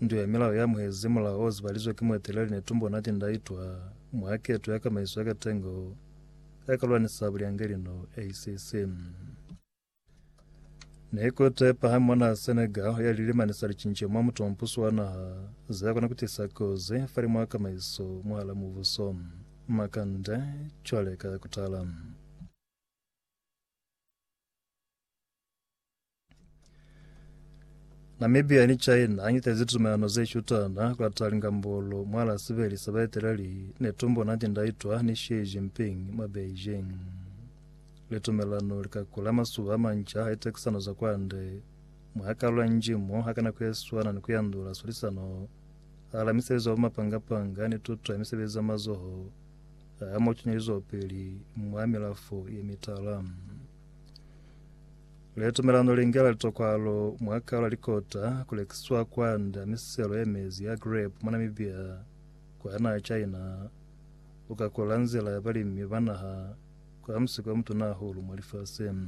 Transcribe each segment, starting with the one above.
Ndu ya Milao ya Muhezi, mulao o zibalizwe ki mueteleli ne tumbo na tinda itwa mwa keto ya kamaiso ya katengo ya ka lwanisa bulyangeli no ACC. Ne ku te pahami mwa naha Senegal ya lilimanisa licinco mwa mutompuso wa naha ze kona ku tisa kozi fali mwa kamaiso mwahala mubuso. Makande, cwale ka kutala. Namibia ni China anyitezi tumelano ze shutana kwa talinga mbolo mwala sibeli sa baeteleli ne tumbo nati ndaitwa ni Xi Jinping mwa Beijing. Le tumelano li ka kula masuba manca a tekisano za kwande mwa kalula njimo ha kana kueswana ni kuyandula sulisano ala misebezi wa mapangapanga ni tuto ya misebezi ya mazoho a mo tunyelizwa peli mwa milafo ye mitala. Le tumelano li ngela litokwalo mwa kaula likota ku lekiswa kwanda miselo ye mezi ya grape mwa Namibia kwa naha China u ka kola nzila ya balimi ba naha kwa musiko mutuna hahulu mwa lifaseng.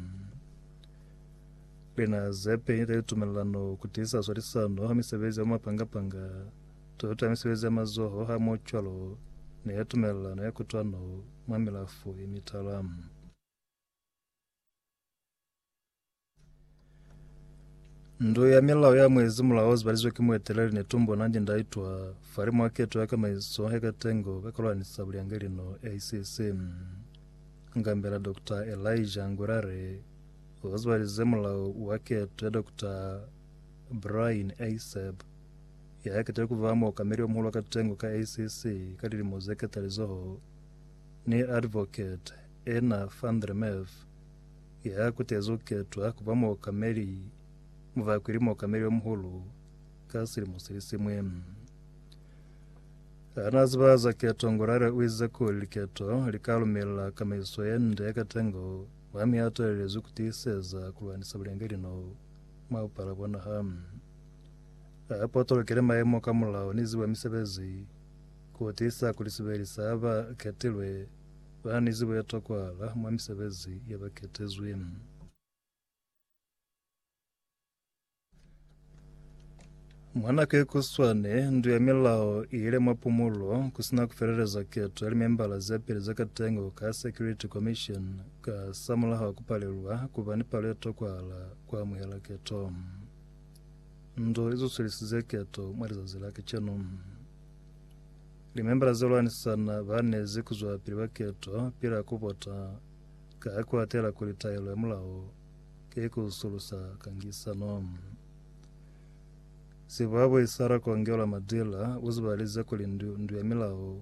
Lina ze peli le tumelano ku tiisa swalisano ha misebezi ya mapangapanga, toto ya misebezi ya mazoho ha mo cwalo ne tumelano ya kutwano mwa milafo ye mitala. Ndu ya milao ya mwezi mulao zibalizwe ki mueteleli ne tumbo na ndi ndaitwa fari mwa keto ya kamaiso he katengo ka kolwani sa buliange lino ACC ngambela Dr. Elijah Ngurare ozibalize mulao wa keto ya Dr. Brian Aseb ya kete kuva mo kameli omuhulu wa katengo ka ACC ka lilimo ze ketalizoho ni advocate Ena van der Merwe, ya kutezi ku ketwa ku ba muokameli mu ba kweli muokameli o muhulu ka silimo se li siñwi. Ha na ziba za keto, Ngorare u ize kuli liketo li ka lumela kamaiso ye nde ya katengo mwa mi a talelezwi ku tiiseza ku lwanisa bulengelino mwa bupala bwa naha. A potolokile maemo ka mulao ni zibo ya misebezi ku tiisa kuli sibeli sa ba ketilwe Ba ni zibo ye tokwahala mwa misebezi ya ba ketezwi. Mwa nako ye kuswane, ndu ya milao i yile mwa pumulo ku si na ku feleleza keto ya limembala ze peli za katengo ka Security Commission ka samulaho ku palelwa ku ba ni palo ye tokwahala ku amuhela keto. Ndu i zusulisize keto mwa lizazi la kacenu. Limembala ze lwanisana ba ne ze kuzwa pili ba keto pila ku vota, ka ha ku atela kuli taelo ya mulao ke ku sulusa kangisano. Sibwabwi sa Rakongelwa Madila u zibalize kuli ndu, ndu ya milao,